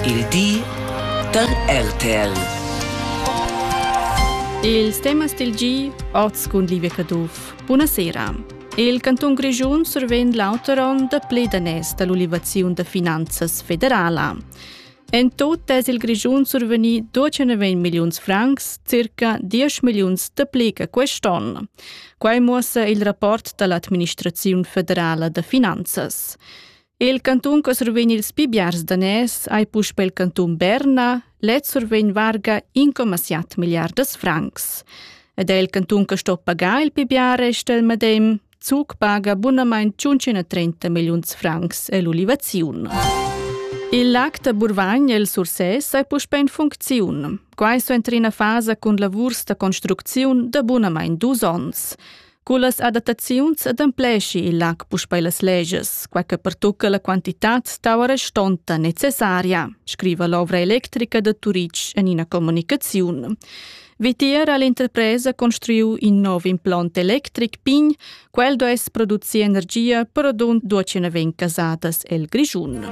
Il di da RTL. Ils temas del gi oz cun Livia Caduff. Buonasera. Il canton Grischun survegn l'auter onn da play danès dall'ulivaziun da finanzas federala. En tot es il Grischun survegni 290 milliuns francs, circa 10 milliuns da play che quest'onn. Quai muossa il rapport dall'administraziun federala da finanzas. Il cantun che survegn ils pi biars daners ei puspei il cantun Berna, lez survegn varga 1,7 milliardas francs. Ed è il cantun che sto pagar il pi bia resta il medem, Zug paga bunamain 530 milliuns francs e l'ulivaziun. Il lac da Burvagn el Sursès è puspè in funcziun. Quai so entri in fasa cun lavurs da construcziun da bunamain dus onns. Cullas adattaziuns adempleschi il lac puspei las legias, quei che pertucca la quantitad stau restonta necessaria, scriva l'ovra electrica da Turitg en ina comunicaziun. Vitier ha l'interpresa construiu in nov implont electric pign, quel duess producir energia per adun ducina vegn casadas el Grischun.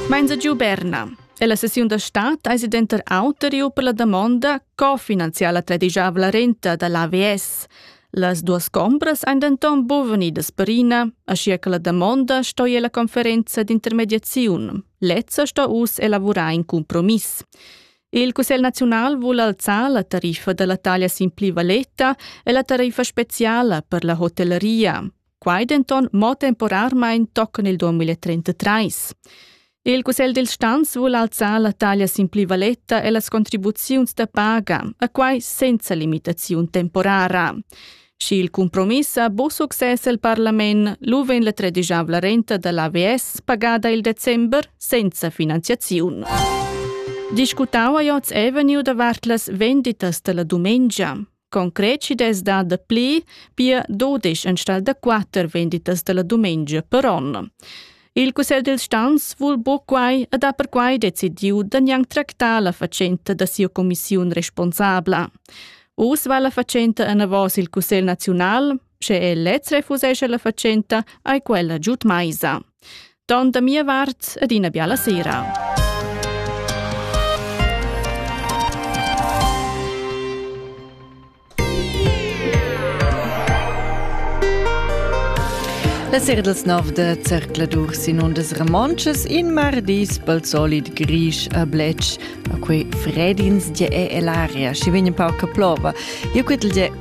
Menza giu Berna. E la sessiun da start eisi denter auter iu per la damonda co finanziar la tradigiavla renta da l'AVS. Las duas combras ein denton bovenidas perina, aschia che la damonda stoi ella conferenza d'intermediaziun. Lezza sto uss elavurar in compromiss. Il Cussegl naziunal vul alzar la tariffa dalla taglia sin pli valeta e la tariffa speciala per la hotelleria. Quai denton mo temporarmein tochen il 2033. Il Cussegl dil Stanz vul alzar la taglia sin plivaletta e las contribuziuns da paga, a quai senza limitaziun temporara. Schi il compromiss ha bu success el parlament, lu vegn la tredisavla renta dall'AVS pagada il december senza finanziaziun. Discutau a Joz Avenue davart las venditas dalla dumengia. Concret chi dess dar dapli, pia dudesch enstagl da quatter venditas dalla dumengia per on. Il cussegl dils stans vul buc quai ed ha perquai decidiu da gnanc tractar la fatschenta da sia commissiun responsabla. Uss va la fatschenta enavos il cussegl naziunal, sche el lez refusesce la fatschenta, ai quella giud meisa. Don da mia vart ed ina biala sera. La sera dels nov de zercladur sin undas romontschas in mardis pel solid grisch a blech a quei fredins de e l'aria, schi vegn un pauc che plova. Io quetel de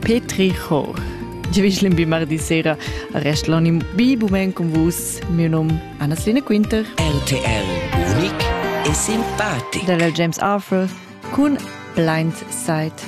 Petri Chor. Giavischlin bi mardi sera arrest l'onim bi bumen con vus. Mio nom Anna-Selina Quinter. RTL, unic e simpatico. Dalla James Arthur con Blind Side.